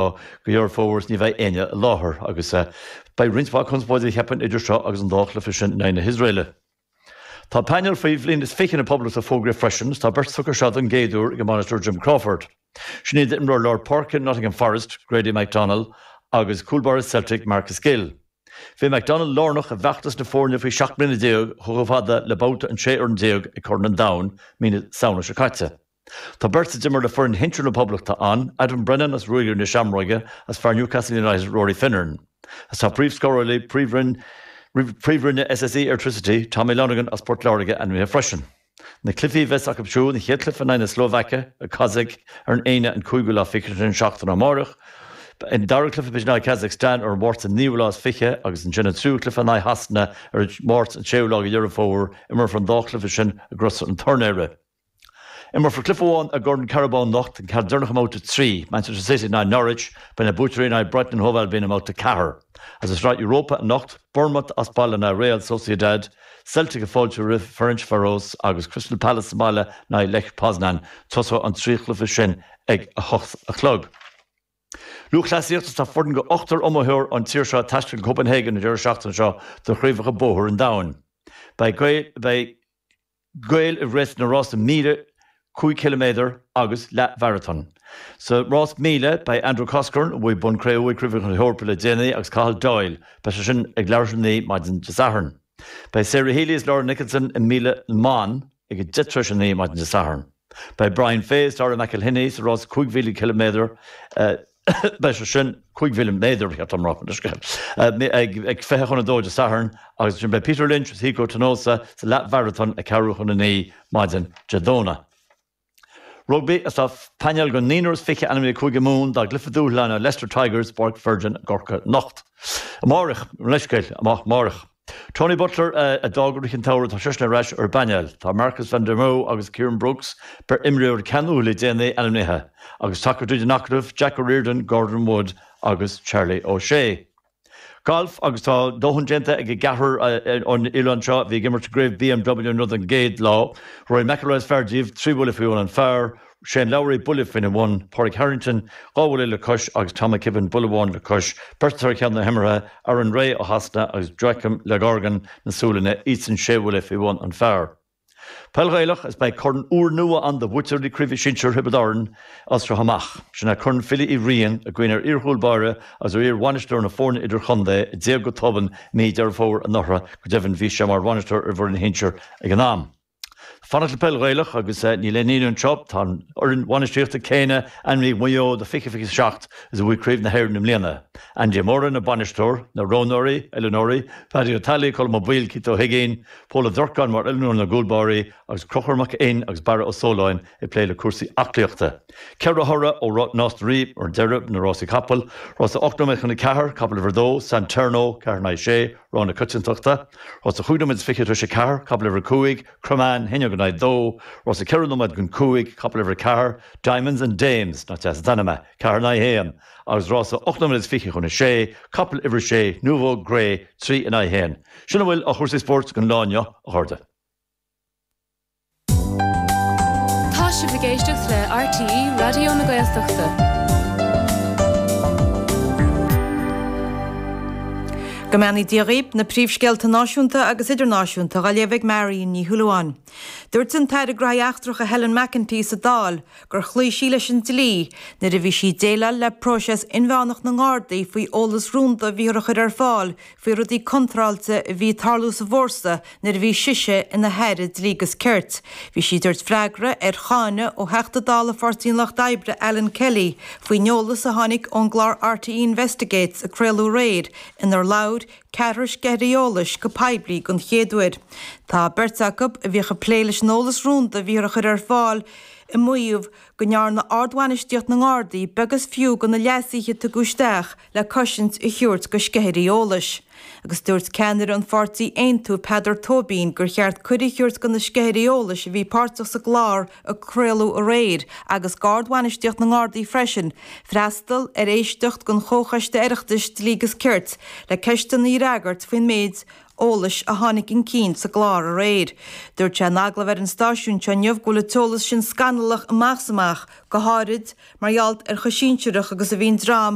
go Deireadh Fómhair ní bheidh éinne i láthair agus beidh roinnt mhaith conspóide, cheapfainn, idir seo agus an dá chluiche sin in aghaidh na hIosraeile. Tá painéal faoi bhliain is fiche na Poblachta fógraithe freisin is tá beirt tugtha seo don gcéad uair ag a mbainisteoir Jim Crawford. Sin iad imreoir lár páirce Nottingham Forest, Grady McDonnell agus cúl báire Celtic, Marcus Gill. Bhí McDonnell lárnach i bhfeachtas na foirne faoi sheacht mbliana déag chomh fada le babhta an 16 fhoireann ag Corn an Domhain mí na Samhna seo caite. Tá beirt a d'imir le foireann shinsir na Poblachta ann, Adam Brennan as Ruagairí na Seamróige agus fear Newcastle United Rory Finneran, agus tá príomhscórálaí Príomhroinn na SSE Airtricity, Tommy Lonergan as Port Láirge ainmnithe freisin. Na cluichí a bheas acu siúd, an chéad chluiche in aghaidh na Slóvaice i Kazaic ar an Aoine an cúigiú lá fichead sin seachtain amárach, an dara cluiche a bheidh in aghaidh Kazakstan ar an Máirt an naoú lá is fiche agus ansin an tríú cluiche in aghaidh Shasana ar an Máirt an séú lá go Dheireadh Fómhair. Imreofar an dá chluiche sin i gCrois an Tornóra. Imreofar cluiche amháin i gCorn Carabao anocht an ceann deireanach i mBabhta 3, Manchester City in aghaidh Norwich, beidh na buaiteoirí in aghaidh Brighton and Hove Albion i mBabhta 4. Is i Sraith Europa anocht, Bournemouth as baile in aghaidh Real Sociedad, Celtic ag fáiltiú roimh Ferencvaros agus Crystal Palace sa mbaile in aghaidh Lech Poznan. Tosóidh an trí chluiche sin ag a hocht a chlog. Lúthchleasaíocht Is tá foireann de ochtar iomaitheoir ón tír seo ag taisteal go Copenhagen an deireadh seachtaine seo do Chraobhacha Bóthair an Domhain. Beidh. Gaeil ag rith sna rásaí míle, cúig chiliméadar agus leathmharatón. Sa rás míle, beidh Andrew Coscoran, a bhuaigh bonn cré-umha ag Craobhacha na hEorpa le déanaí, agus Cathal Doyle, beidh sé sin ag leathuair tar éis a naoi maidin Dé Sathairn. Beidh Sarah Healy is Laura Nicholson i míle na mban ag a deich tar éis a naoi maidin Dé Sathairn. Beidh Brian Fay is Darragh McElhinney sa rás 5,000 ciliméadar, beidh sé sin, cúig mhíle méadar ba cheart dom a rá, mar sin, ag fiche chun a dó Dé Sathairn agus ansin beidh Peter Lynch agus Hiko Tonosa sa leathmharatón ag ceathrú chun a naoi maidin Dé Domhnaigh. Rugbaí, Is tá painéal de naonúr is fiche ainmnithe ag Cúige Mumhan dá gcluiche dúshláine le Leicester Tigers i bPáirc Virgin i gCorcaigh anocht. Amárach, mo leithscéal, amach amárach. Tony Butler a d'fhág i rith an tsamhraidh, tá seisean ar ais ar an bpainéal. Tá Marcus van der Merwe agus Kieran Brookes, beirt imreoir a ceannaíodh le déanaí, ainmnithe, agus tacair tríd an acadamh, Jack O'Riordan, Gordon Wood agus Charlie O'Shea. Galf agus tá dóthain déanta ag an gceathrar ón oileán seo a bhí ag imirt i gCraobh BMW i Wentworth don gcéad lá. Rory McIlroy is fearr díobh, trí bhuille faoi bhun an phar, Shane Lowry, buille faoina bhun, Pádraig Harrington, dhá bhuille le cois, agus Tom McKibbin, buille amháin le cois, beirt atá ar cheann na himeartha, Aaron Rai ó Shasana agus Joakim Lagergren na Sualainne, iadsan sé bhuille faoi bhun an phar. Peil Ghaelach, Is beidh corn úrnua ann do bhuaiteoirí na Craoibhe Sinsir Thiobraid Árann as seo amach. Sin é Corn Philly Uí Riain, i gcuimhne ar iarchúl báire agus ar iar-bhainisteoir na foirne idir-chontae a d'éag go tobann mí Dheireadh Fómhair anuraidh, go deimhin bhí sé mar bhainisteoir ar an bhfoireann shinsir ag an am. Fanacht le Peil Ghaelach agus níl aon ionadh anseo, tá an fhoireann bhainistíochta céanna ainmnithe ag Maigh Eo do 20 27 is a bhuaigh Craobh na hÉireann i mbliana. Andy Moran an bainisteoir, na roghnóirí, oiliúnóirí, Paddy Ó Teallaigh, Colm Ó Baoill, Keith Ó hUiginn, Pól Ó Durcáin mar oiliúnóir na gcúl báirí agus Conchúr Mac Fhinn agus Barra Ó Sóláin ag plé le cúrsaí aclaíochta. Ceithre thoradh ó Nás na Ríogh ar deireadh na rásaí capall, Rás a 8 nóiméad chun a ceathair, Capall Uimhir 2, San Terno, ceathair in aghaidh sé, Rogha na coitiantachta, Rás a 5 nóiméad 20 tar éis a ceathair, capall uimhir a cúig, Cromain, haon déag in aghaidh 2, Rás a 4 nóiméad don cúig, capall uimhir a ceathair, Diamonds and Dames, nach deas an t-ainm é, ceathair in aghaidh 1, agus Rás a 8 nóiméad 20 chun a sé, capall uimhir a sé, Nouveau, Gray, trí in aghaidh 1. Sin a bhfuil de chúrsaí spóirt don lá inniu, a chairde. Tá sibh ag éisteacht le RTÉ Raidió na Gaeltachta. Go mbeannaí Dia dhaoib, na príomhscéalta náisiúnta agus idirnáisiúnta dhá léamh ag Marian Ní Shúilleabháin. Dúirt an tAire Gnóthaí Eachtracha Helen McEntee sa Dáil gur chloígh sí leis an dlí nuair a bhí sí ag déileáil le próiseas inmheánach na nGardaí faoi eolas rúnda a bhíothar a chur ar fáil faoi rudaí contráilte a bhí ag tarlú sa bhfórsa nuair a bhí sise ina hAire Dlí agus Cirt. Bhí sí ag tabhairt freagra ar cháineadh ó Theachta Dála Pháirtí an Lucht Oibre Alan Kelly faoin eolas a tháinig ón gclár RTÉ Investigates a craoladh aréir inar labhair ceathrar sceithirí eolais go poiblí den chéad uair. Tá beirt acu a bhíodh ag plé leis an eolas rúnda a bhíothar a chur ar fáil ag maíomh go ndearna ardbhainistíocht na nGardaí beag is fiú de na leasuithe a tugadh isteach le cosaint a thabhairt do sceithirí eolais, agus dúirt ceannaire an pháirtí Aontú, Peadar Tóibín, gur cheart cuireadh a thabhairt do na sceithirí eolais a bhí páirteach sa gclár a craoladh aréir, agus d'Ard-Bhainistíocht na nGardaí freisin, freastal ar éisteacht den Chomhchoiste Oireachtais Dlí agus Cirt le ceisteanna a fhreagairt faoin méid eolais a tháinig chun cinn sa gclár aréir. Dúirt sé in agallamh ar an stáisiún seo inniu go bhfuil an t-eolas sin scannalach amach is amach, go háirid mar gheall ar chomh sinsearach agus a bhí an dream